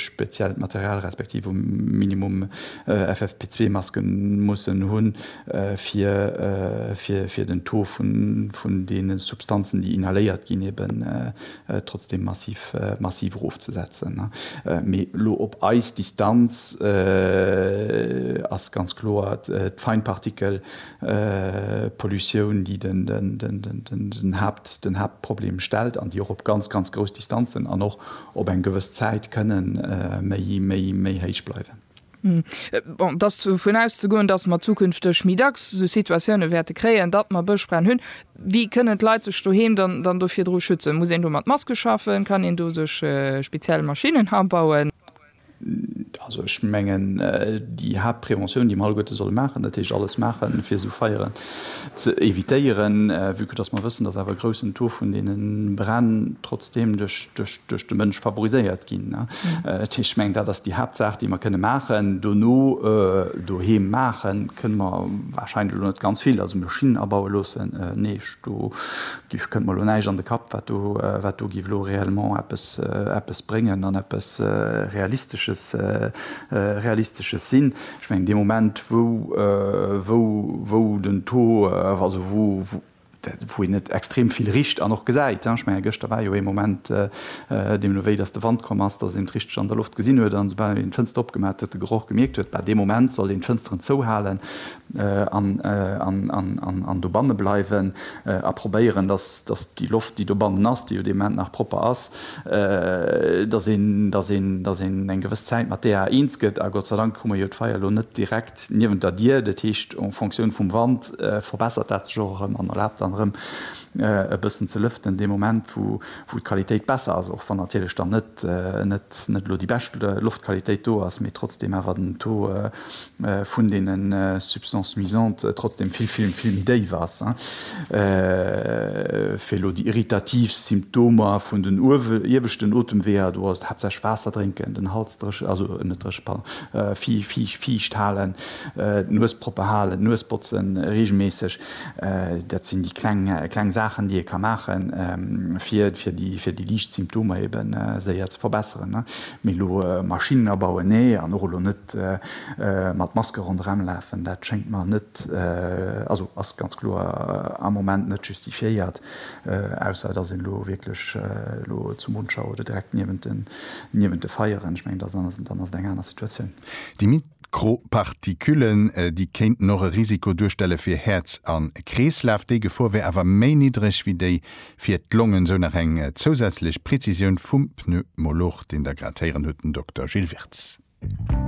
speziellt Material respektiv um Minimum FFP2-Masken mussen hunn, fir den Taux vun deene Substanzen, déi inhaléiert ginn, eben trotzdeem massiv erofzesetzen. Mee elo op eis Distanz ass ganz kloer, d'Feinpartikel Pollutioun, déi den Haaptproblem stellt an déi och op ganz, ganz grouss Distanzen an och op eng gewëss Zäit kënne méi héich bleiwen. Bon, et ass dovun auszegoen, datt mer zukünfteg méi dacks esou Situatioune wäerte kréien, datt mer Bëschbränn hunn. Wéi kënnen d'Leit sech doheem dann do virdru schützen? Muss een do mat Maske schaffen? Kann een do sech speziell Maschinnen abauen? Also ech mengen, déi Haaptpräventioun, déi mer alleguerte solle maachen, dat heescht alles maachen, fir esou Feieren ze évitéieren, vue que dass mer wëssen, dass awer e groussen Taux vun deene Bränn trotzdeem duerch de Mënsch favoriséiert ginn. Dat heescht, ech mengen, dat ass déi Haaptsaach, déi mer kënne maachen. Dono doheem maache kënne mer warscheinlech elo net ganz vill. Also Maschinen abaue loossen, nee, ech do Giff, Kënnt mer elo näischt an de Kapp, wat do, wat do giff elo réellement eppes, eppes bréngen an eppes Realistesches, Realistesches sinn. Ech mengen, dee Moment, wou, wou, wou den Taux, also wou, wou, wou een net extrem vill richt an och gesäit, ech menge gëschter war jo ee Moment, deemno wéi datt de Wand komm ass, datt een d'richteg an der Loft gesinn huet, an esoubal een d'Fënster opgemaach huet, de Geroch gemierkt huet, bah, dee Moment soll een d'Fënsteren zouhalen, an dobanne bleiwen a probéieren, datt déi Loft, déi dobannen ass, déi jo dee Moment nach propper ass, datt een eng gewëss Zäit mat där eens gëtt. A Gott sei Dank hu mer jo d'Feier elo net direkt niewent der Dier. Dat heescht, en Fonctioun vum Wand verbessert dat sech och erëm an erlaabt dann erëm e bëssen ze lëften, dee Moment wou d'Qualitéit besser ass, och wann natierlech dann net net elo déi bescht Loftqualitéit do ass, mee trotzdeem awer den Taux vun deene Substances nuisantes trotzdeem vill, vill, vill méi déif ass, fir elo déi irritativ Symptomer vun den ieweschten Otemweeër, do ass et haaptsächlech Waasser drénken, den Hals dréche, also net dréche, pardon, fiicht halen, d'Nues propper halen, d'Nues botzen reegelméisseg. Dat sinn déi kleng Saachen, déi ee ka maachen, fir déi liicht Symptomer ebe séier ze verbesseren. Mee elo Maschinnen abauen, nee. An och elo net mat Maske ronderëm lafen, dat schéngt mer net, also ass ganz kloer am Moment net justifiéiert, ausser et ass een elo wierklech elo zu Monschau oder direkt niewent de Feieren. Ech mengen, dann ass et eng aner Situatioun. D'Gro-Partiküllen, déi kéinten och e Risiko duerstelle fir Häerz a Kreeslaf. Déi Gefor wär awer méi niddreg wéi déi fir d'Longen, sou nach eng zousätzlech Prezisioun vum Pneumolog, deen Der grad héieren hutt, den Dokter Gilles Wirtz.